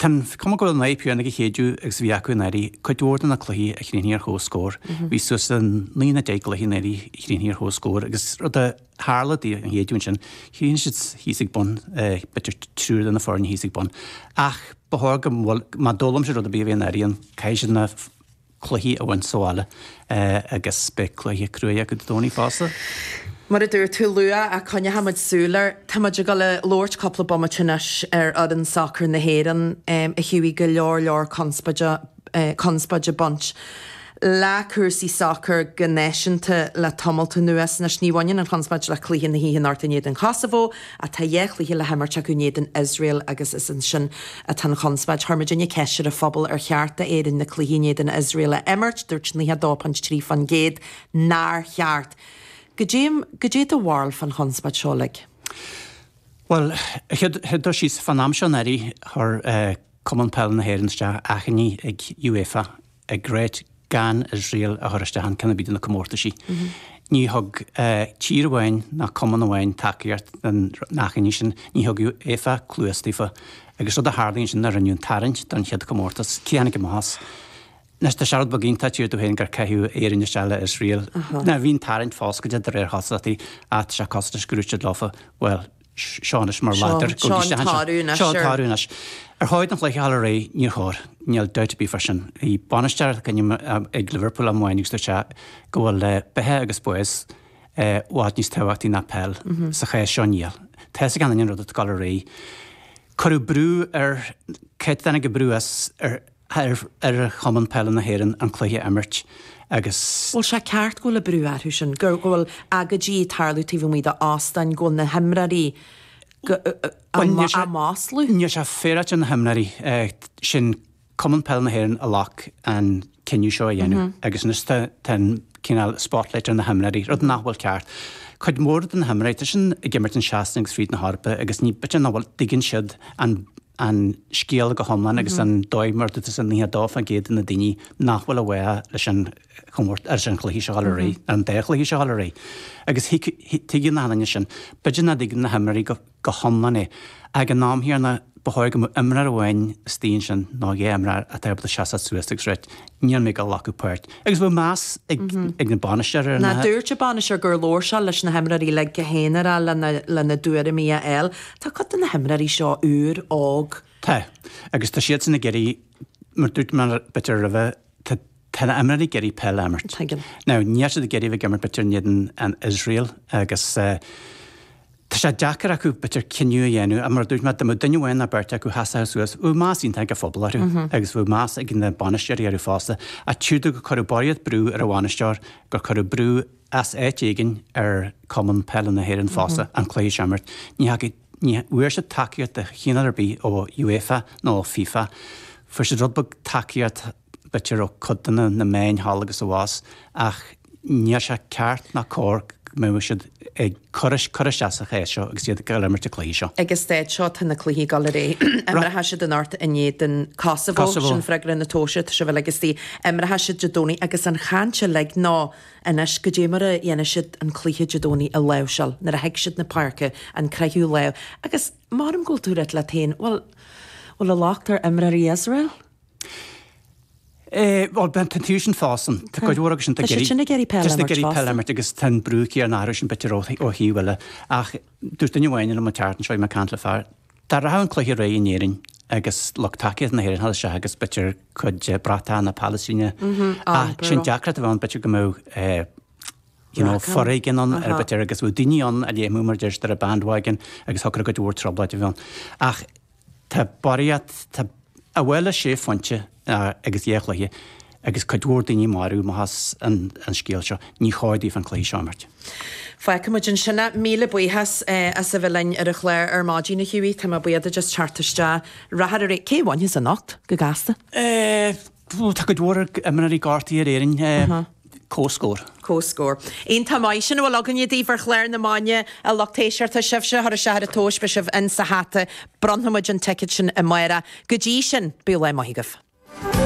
Tá an chuma go bhfuil an fhadhb chéanna ag séideadh agus a bhí acu anuraidh. Cuid mhór de na cluichí a chríochnaigh ar chomhscór, bhí suas le naoi nó deich gcluiche anuraidh a chríochnaigh ar chomhscór agus rud a tharla dtí an shéideadh ansin, chríochnaigh siad thíos ag bun, b'fhéidir triúr de na foirne thíos ag bun. Ach ba chóir go, má d'fhoghlaim siad rud ar bith ó bhí anuraidh ann, caithfidh siad na, cluichí a bhaint sa bhaile agus beidh cluiche cruaidh acu Dé Domhnaigh fosta. Mar a dúirt tú luath, a coinneochaidh muid súil air. Tá muid ag dul a labhairt cúpla bomaite anois ar fhoireann sacair na hÉireann a thabhaigh go leor leor conspóide, conspóide ag baint le cúrsaí sacair go náisiúnta le tamalt anuas. Anois ní bhaineann an chonspóid le cluiche na hoíche anocht in éadan Kosovo, Tá dhá chluiche le himirt acu in éadan Iosrael agus is ansin atá an chonspóid. Chuir muidinne ceist ar an phobal ar cheart d'Éirinn na cluichí in éadan Iosrael a imirt, dúirt 92.3 fán gcéad nár cheart. Goidé do bharúil fán chonspóid seo uilig? Bhuel, chéad dul síos, fán am seo anuraidh, chuir Cumann Peile na hÉireann isteach achainí ag UEFA ag ráit gan Iosrael a chur isteach i gceann ar bith de na comórtaisí. Ní thug tír amháin ná cumann amháin tacaíocht don achainí sin, ní thug UEFA cluas daofa. Agus rud a tharlaigh ansin ná rinneadh an tarraingt don chéad chomórtas. Cé a tháinig amach as? Anois tá sé rud beag iontach, d'iarr tú féin gur caitheadh Éirinn isteach le Iosrael. Bhí an tarraingt foscailte de réir cosúlachta, ach tá sé costais go raibh siad lofa. Bhuel. Seo anois mar a deir tú ag tarlú anois. Ar chóir an cluiche a dhul ar aghaidh? Níor chóir. Níl dabht ar bith fá sin. Bhí bainisteoir ag an am ag Liverpool am amháin agus dúirt sé go bhfuil beatha agus bás i bhfad níos tábhachtaí ná peil sa chás seo. Níl. Tá's ag achan nduine an rud atá ag dul ar aghaidh. Cuireadh brú ar, cá háit a dtáinig an brú as ar, ar Chumann Peile na hÉireann an cluiche a imirt agus. Bhfuil sé ceart go bhfuil an brú orthu sin, go bhfuil agóidí ag tarlú taobh amuigh de óstáin, go bhfuil na himreoirí á maslú? Níl sé féaráilte ar na himreoirí, sin Cumann Peile na hÉireann a ghlac an cinneadh seo a dhéanamh agus anois tá an. cineál spotlight ar na himreoirí, rud nach bhfuil ceart. Cuid mhór de na himreoirí, tá siad ag imirt i Sasana agus fríd na hEorpa agus anois b'fhéidir nach bhfuil, dtuigeann siad an an scéal go hiomlán agus an dóigh mar a dúirt tusa 92% de na daoine nach bhfuil i bhfách leis an chomórtas, leis an chluiche seo a dhul ar aghaidh, an dá chluiche seo a dhul ar aghaidh. Agus tuigeann achan nduine sin, b'fhéidir nach dtuigeann na himreoirí go. go hiomlán é. Ag an am chéanna, ba chóir go mbeadh imreoir amháin istigh ansin, nó dhá imreoir, atá ábalta seasamh suas agus ráit níl mé ag dul a ghlacadh páirt. Agus go mbeadh meas ag an bainisteoir ar na. Dúirt an bainisteoir gur labhair sé leis na himreoirí uilig go haonarach lena dtuairimí a fháil. Tá cuid de na himreoirí seo úr, óg. Tá. Agus tá siadsan ag iarraidh, mar dúirt mé b'fhéidir roimhe, Tá na himreoirí ag iarraidh peil a imirt. Now, níl siad ag iarraidh a bheith ag imirt b'fhéidir in éadan Iosrael agus tá sé deacair acu b'fhéidir cinneadh a dhéanamh ach mar a dúirt mé, dá mbeadh duine amháin ná beirt acu a sheasfadh suas, bheadh meas iontach ag an phobal orthu agus bheadh meas ag na bainisteoirí orthu fosta. Ach tchítear domh gur cuireadh barraíocht brú ar an bhainisteoir, gur cuireadh brú as áit éigin ar Chumann Peile na hÉireann fosta an cluiche seo a imirt. Ní theachaigh. Ní bhfuair siad tacaíocht de chineál ar bith ó UEFA nó ó FIFA. Fuair siad rud beag tacaíochta, b'fhéidir, ó chuid de na meáin thall agus abhus, ach níl sé ceart ná cóir go mbeadh siad ag cur suas leis seo agus iad ag imirt na cluichí seo. Ag an staid seo, tá na cluichí ag dul ar aghaidh. Imreoidh siad anocht in éadan Kosovo, sin freagra na tomhaiste, tá sibh uilig istigh. Imreoidh siad Dé Domhnaigh agus an chaint uilig ná, anois, caidé mar a dhéanfaidh siad an cluiche Dé Domhnaigh a láimhseáil nuair a thig siad 'na páirce an gcroithfidh lámh. Agus mar a mbeadh go bhfuil tú ag rá leat féin, bhuel, bhfuil an locht ar imreoirí Iosrael? Eh, bhuel, b'fhéidir tá siadsan fosta. Tá cuid mhór acusan atá ag iarraidh, atá ag iarraidh peil a imirt fosta. Agus tá an brú céanna orthusan b'fhéidir ón taobh eile. Ach dúirt duine amháin liom an tseachtain seo, bhí mé ag caint le fear, Dá rachadh an cluiche ar aghaidh in Éirinn agus lucht tacaíochta na hÉireann a theacht isteach agus b'fhéidir cuid bratacha na Palaistíne ann. Sin deacracht a bheadh ann, b'fhéidir go mbeadh you know foréigean ann nó b'fhéidir agus bheadh daoine ann a léimfeadh mar a deir siad ar an bandwagon agus thiocfadh cuid mhór trioblóid a bheith ann. Ach tá barraíocht, tá an bhfuil sé phointe, agus dhá chluiche agus cuid mhór daoine marbh, mar atá an scéal seo, ní cóir daofa an cluiche seo a imirt. Feicfidh muid ansin é. Míle buíochas as a bheith linn ar an chlár ar maidin, a Hughie. Tá mé buíoch duit as teacht isteach ar ndóigh. Cé a bhainfeas anocht, go gasta? Tá cuid mhór imreoirí gortaithe ar Éirinn. Comhscór. Comhscór. An t-am, ó sin a bhfuil againne daoibh ar chlár na maidine, a lucht éisteachta, sibhse a chuir isteach ar an tomhas, beidh sibh in sa hata, bronnfaimid an ticéad sin amárach. Go dtí sin, bíodh lá maith agaibh.